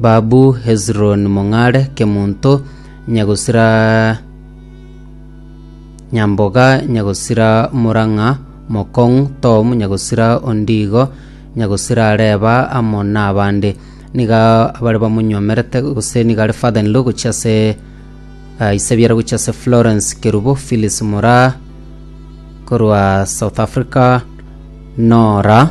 Babu Hezironi mong'are Kemonto nyagosira Nyamboga nyagosira Murang'a mokong'u Tom nyagosira Ondigo nyagosira Reba amo nabande niga abare bamonyomerete gose niga are father in law gochia ase uh, isebiara gochia ase Florence Kerubo Phyllis Mura korwa South Africa Nora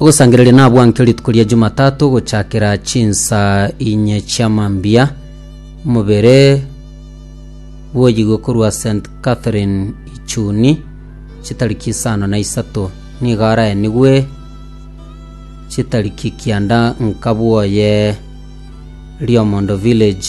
Ogosangereria nabwankio rituko ria Jumatatu gochakera chinsa inye chia mambia. Mobere bwoyigwe korwa St Catherine Ichuni chitariki isano na isato nigo araenigwe chitariki kianda nkabwoye Riomondo Village.